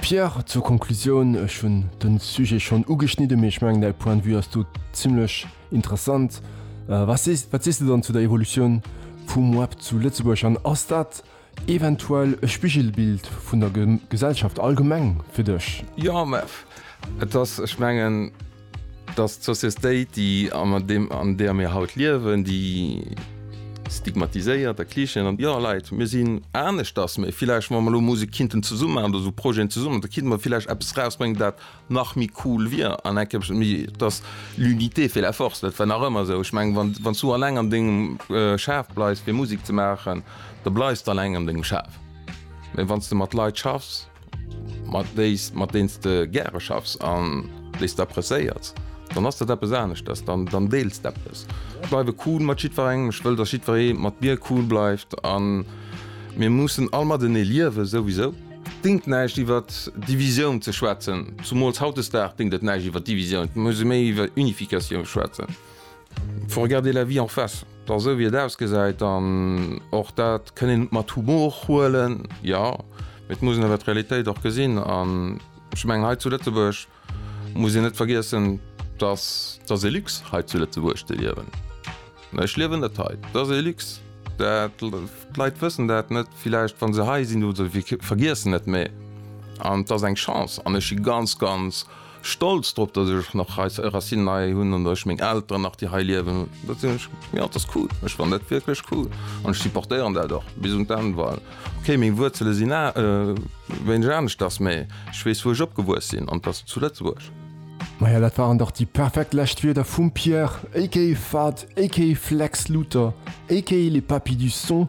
Pierre, zur Konklusioun, ech hunn de Sujet schonn ugeschnidde mee ech mengen däi Point de vue ass do zimmlech interessant. Wat sees, wat sees de dann zu der Evolutioun vum Web zu Lëtzebuerg an ass dat eventuell e Spigelbild vun der Gesellschaft allgemeng fir dech? JMF, Et ass, ech mengen. Dass d'Sociestéit, déi an deer mir haut liewen, déi stigmatiséiert a Klischeeën an, jo Leit, mir sinn aneschters, mee villäicht wa mer elo Musek kinnten zesumme maachen oder esou Projeten zesumme maachen, da kinnte mer villäicht eppes rausbréngen, dat nach méi cool wier an eng Kéier méi dass l'unité fait la force. Dat war nach ëmmer esou. Ech mengen, wann s du alleng an dengem Schaf bleifs fir Musek ze maachen, da bleifs de alleng an dengem Schaf. Mee wann s de mat Leit schaffs, mat déis, mat deens de gäre schaffs an déis d'apprecéiers, dann ass dat eppes aneschters, dann, dann deels d'eppes. Ech bleiwe cool mat jiddwerengem, ech wëll, datt jiddweree mat mir cool bleift a mir mussen all matenee liewen, souwisou. Dingt näischt iwwer Divisioun ze schwätzen, zumools hautdesdag dingt et näischt iwwer Divisioun, et muss ee méi iwwer Unificatioun schwätzen. Faut regarder la vie en face, da sou wéi et ausgesäit, an och dat kënn een mat Humor huelen, jo, mee et muss een awer d'Realitéit och gesinn. An ech mengen, hei zu Lëtzebuerg muss een net vergiessen, dass et ass ee Luxe hei zu Lëtzebuerg ze liewen. Ech liewen net hei, et ass ee Luxe, dat, d'Leit wëssen dat net villäicht wa se hei sinn, oder vergiessen et, mee an et ass eng Chance an ech si ganz, ganz. stolz drop dass ech nach hei Racinen hei hunn an ech meng Elteren nach déi hei liewen, dat sinn ech jo dat ass cool, ech fannen dat wierklech cool an ech supportéieren dat och bis un d'Enn well okay meng Wuerzele sinn a wéineg aneschters mä ech weess wou ech opgewuess sinn an dass zu Lëtzebuerg. Maja dat waren dach déi perfekt lescht Wierder vum Pierre aka Fahd aka Flex Luther aka les Papis du Son